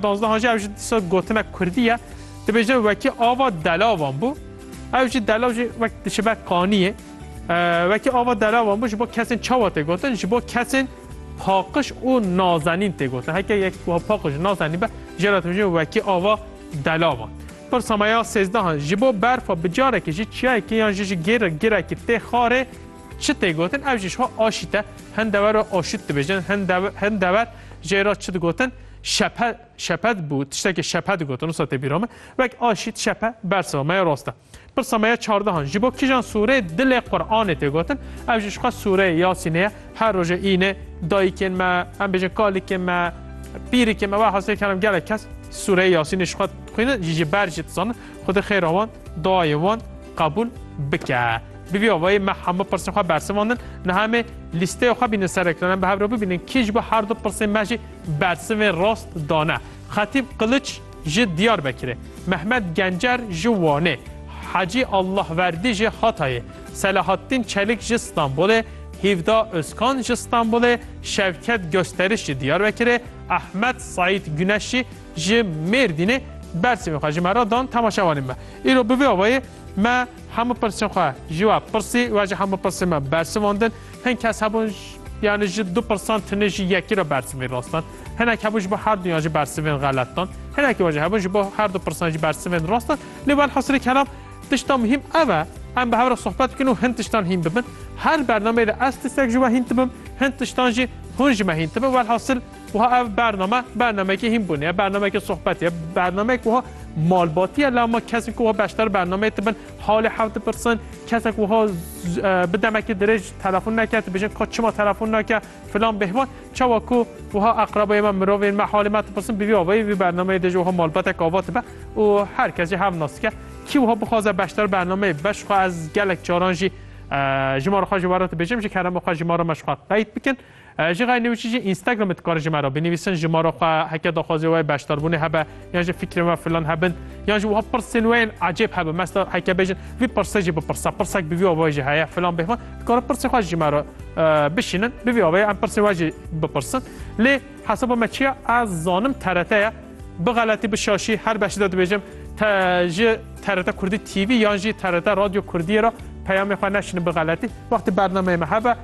Dazda Hacî ew jî dîsa gotinek kurdî ye, dibêje wekî ava delavan bû. Ew jî delav jî wek diçe ber qaniyê. Wekî ava delavan bû ji bo kesên çawa tê gotin, ji bo kesên paqiş û nazenîn tê gotin. Heke yek wiha paqiş û nazenîn be jê re dibêje wekî ava delavan. Pirsa me ya sêzdehan, ji bo berfa bi carekê ji çiyayekê yan jî ji gêr girekê tê xarê çi tê gotin? Ew jî jiha aşît e. Hin dever re aşût dibêjin, hin dever jê re çi digotin? Şephe, şephet bû, tiştekê şephe digotin, wisa tê bîra me. Wek a şît şephe bersiva me ya rast e. Pirsa me ya çardehan, ji bo kijan sûrê dilê Quranê tê gotin, ev jî ji xwe sûreyê Yasînê ye, her rojê îne dayikên me, em bêjin kalikên me, pîrikên me, wahasê kerim gelek kes sûreyê Yasînê ji xwe dixwînin, jî ji ber jî dizanin Xwedê xêra wan, duayên wan qebûl bike. Bi vî awayî me hemû pirsên xwe bersivandin, niha em ê lîsteya xwe bînin ser ekran, em bi hev re bibînin kî ji bo her du pirsên me jî Bersivê rast dane. Xetîb Qiliç ji Diyarbekirê, Mehmet Gencer ji Wanê, Hecî Allahverdî ji Hatayê, Selahattîn Çelik ji Stenbolê, Hîvda Ozkan ji Stenbolê, Şevket Gosteriş ji Diyarbekirê, Ehmed Saîd Guneşî ji Mêrdînê bersivên xwe ji me re dan temaşevanên me. Îro bi vê awayê me hemû pirsên xwe ji we pirsî, we jî hemû pirsên me bersivandin. Hin kes hebûn yani ji du pirsan tunê jî yekî re bersivê rastan. Hinek hebûn ji bo her duyan jî bersivên xelet dan. Hinekî wajê hebûn ji bo her du pirsan jî bersivên rast dan. Lê welhasirê kelam tişta muhîm ev e em bi hev re sohbet bikin û hin tiştan hîn bibin. Her bernameyê de ez tiştek ji we hîn dibim, hin tiştan jî hûn ji me hîn dibin. Welhasil wiha ev bername bernameyekî hînbûnê ye, bernameyekî sohbetê ye, bernameyek wiha malbatî ye la ma kesên ku wiha beşdar bernameyê dibin Halê hev dipirsin, kesek wiha bi demekî dirêj telefon neke, tu bijin ka çima telefon nake filan bêhvan. Çawa ku wiha eqrebeyê me, mirovên me halê me dipirsin bi vî avayî vî bernameyê de jî wiha malbatek ava dibe û her kes jî hev nas dike. Kî wiha bixwaze beşdar bernameyê be ji xwe ez gelek caran jî ji ma re xwe ji were dibêjim ji kerema xwe ji ma re me ji xwe qeyd bikin. Ji xeyr nêwîşî jî Instagramê dikarin ji me re binivîsin ji ma re xwe heke daxwazê we beşdarbûnê hebe yan jî fikrên we filan hebin yan jî wiha pirsên we yên ecêb hebin mesela heke bêjin vî pirse jî bipirse pirsek bi vî avayê jî heye filan bêhman dikarin pirsê xwe ji me re bişînin bi vî avayê em pirsên we jî bipirsin lê hesaba me çiya ez zanim TRT ye bi xeletî bi şaşî her beşî de dibêjim ji TRT Kurdî TV yan jî TRT Radyo Kurdiyê re peyamê xwe neşînin bi xeletî wextî bernameyê me hebe